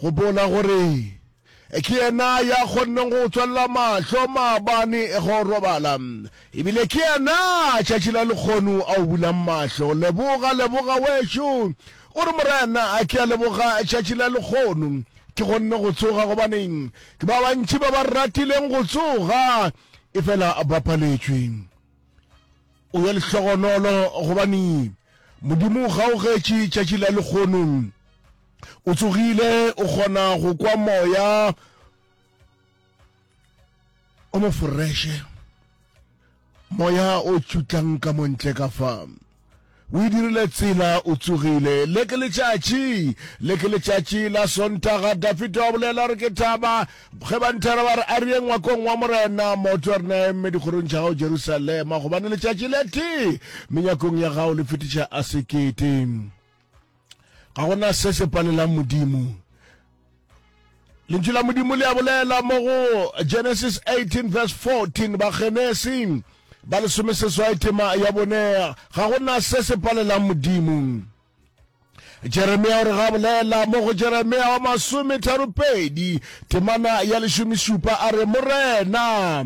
Gopola gore ke yena ya kgonneng go tswelela mahlo maabane ge o robala ebile ke yena tšatši la lekgonu a o bulang mahlo leboga leboga wešo o re morena a ke a leboga tšatši la lekgonu ke kgonne go tsoga gobaneng ke ba bantši ba ba ratileng go tsoga efela ba paletšwe o ye lehlogonolo gobane modimo ga o getše tšatši la lekgono o tsogile o kgona go kwa moya o moforeshe moya o tšutlang ka montle ka fa O e dirile tsela, o tsogile. Le ke letšatši, le ke letšatši la Sontaga. Dafita wa bolela re ke thaba. Ge ba nthera ba re a re ye ngwakong wa Morena, maoto a rena eme dikgorong tša gago Jerusalema, gobane letšatši le tee menyakong ya gago le fetiša a sekete. ga gona se se palelang modimo lentšu la modimo le a bolela mo go genesis 18 verse 14 bagenesi ba lesome seswai tema ya bone ga gona se se palelang modimo jeremia o re ga bolela mo go jeremia wa masome tharo pedi temana ya lešomešupa a re morena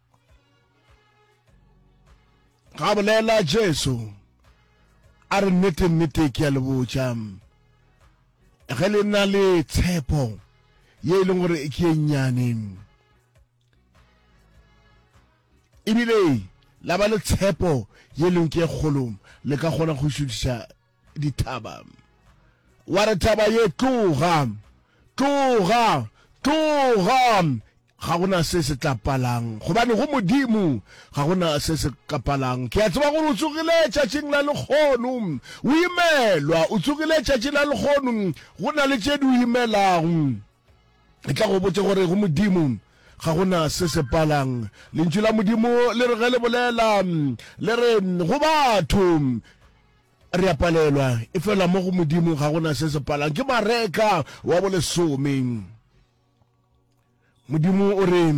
ga bolela jesu a re nnete nnete ke a le botša ge le na le tshepo ye e leng gore ke e nnyane ebile la ba le tshepo ye leng ke kgolo le ka kgona go šutiša dithaba wa re thaba ye tloga tloga tloga ga gona se se tla palang gobane go modimo ga gona se se ka palang ke a tseba gore o tsogile tšatšing la lekgono o imelwa o tsogile tšatšing la lekgono go na le tše di o imelago Ke tla go botša gore go Modimo ga gona se se palang. Lentšu la Modimo le re ge le bolela le re go batho re a palelwa e fela mo go Modimo ga gona se se palang. Ke Mareka wa bolesome. Modimo o re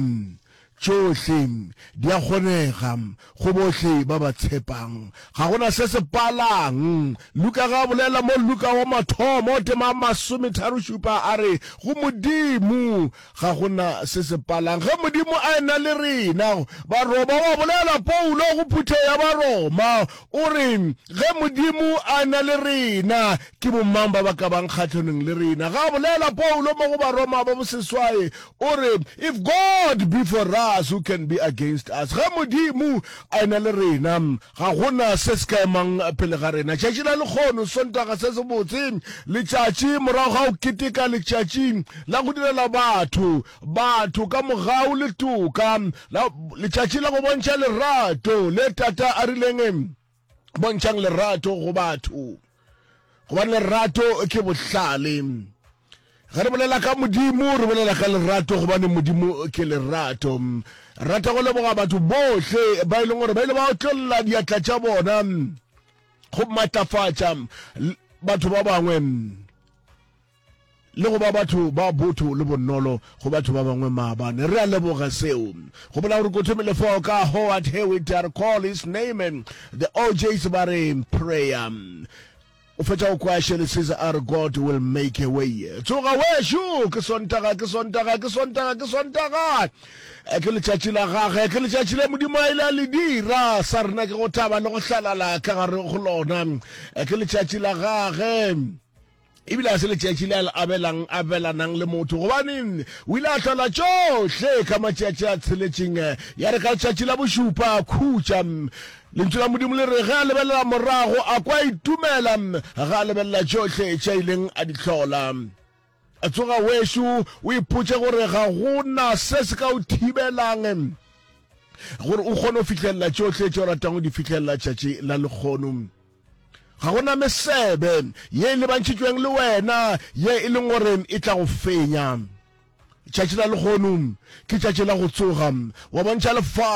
Tšohle di a kgonega go bohle ba ba tshepang. Ga go na se se palang. Luka ge a bolela mo Luka wa mathomo o tema masometharo-šupa a re, Go Modimo ga go na se se palang. Ge Modimo a ena le rena. Baroma wa bolela Paulo go phuthego ya Baroma, o re, Ge Modimo a ena le rena, ke bomang ba ba ka bang kgahlanong le rena? Ge a bolela Paulo mo go Baroma ba boseswai, O re, If God be for us, who can be against us? Ge Modimo a ena le rena, ga go na se se ka emang pele ga rena. Tšatši la lekgono, Sontaga se sebotse, letšatši morago ga go keteka letšatši la go direla batho, batho ka mogau le toka, la, letšatši la go bontšha lerato le Tata a rileng, bontšhang lerato go batho gobane lerato ke bohlale ge re bolela ka modimo re bolela ka lerato gobane modimo ke lerato rata go leboga batho bohle ba e leng gore ba ile ba otlolla diatla tša bona go matlafatša batho ba bangwe le go ba batho ba botho le bonolo go batho ba bangwe maabane re a leboga seo go bola gore kotho melefo ka howard here we dare call his name and the ojs ba re prayer o fetša go kwa shele says our god will make a way tsoga wešo ke sontaga ke sontaga ke sontaga ke sontaga Eh, ke letšatši la gage ke letšatši le modimo a ile a le dira sa rena ke go thaba le go hlalala ka gare go lona Eh, ke letšatši la gage e bile ga se letšatši le a le abelang abelanang le motho gobane o ile a hlola tšohle ka matšatši a tsheletšeng ya re ka letšatši la bošupa a khutša lentšu la modimo le re ge a lebelela morago a kwa itumela ga a lebelela tšohle tša ileng a di hlola a tsoga wešo o ipotše gore ga go na se se ka o thibelang gore o kgone go fitlhelela tšohle tše o ratang go di fitlhelela tšatši la lekgono Ga go na mesebe ye e lebantšhitšweng le wena ye e leng gore e tla go fenya. Tšatši la lekgono ke tšatši la go tsoga wa bontšha lefase.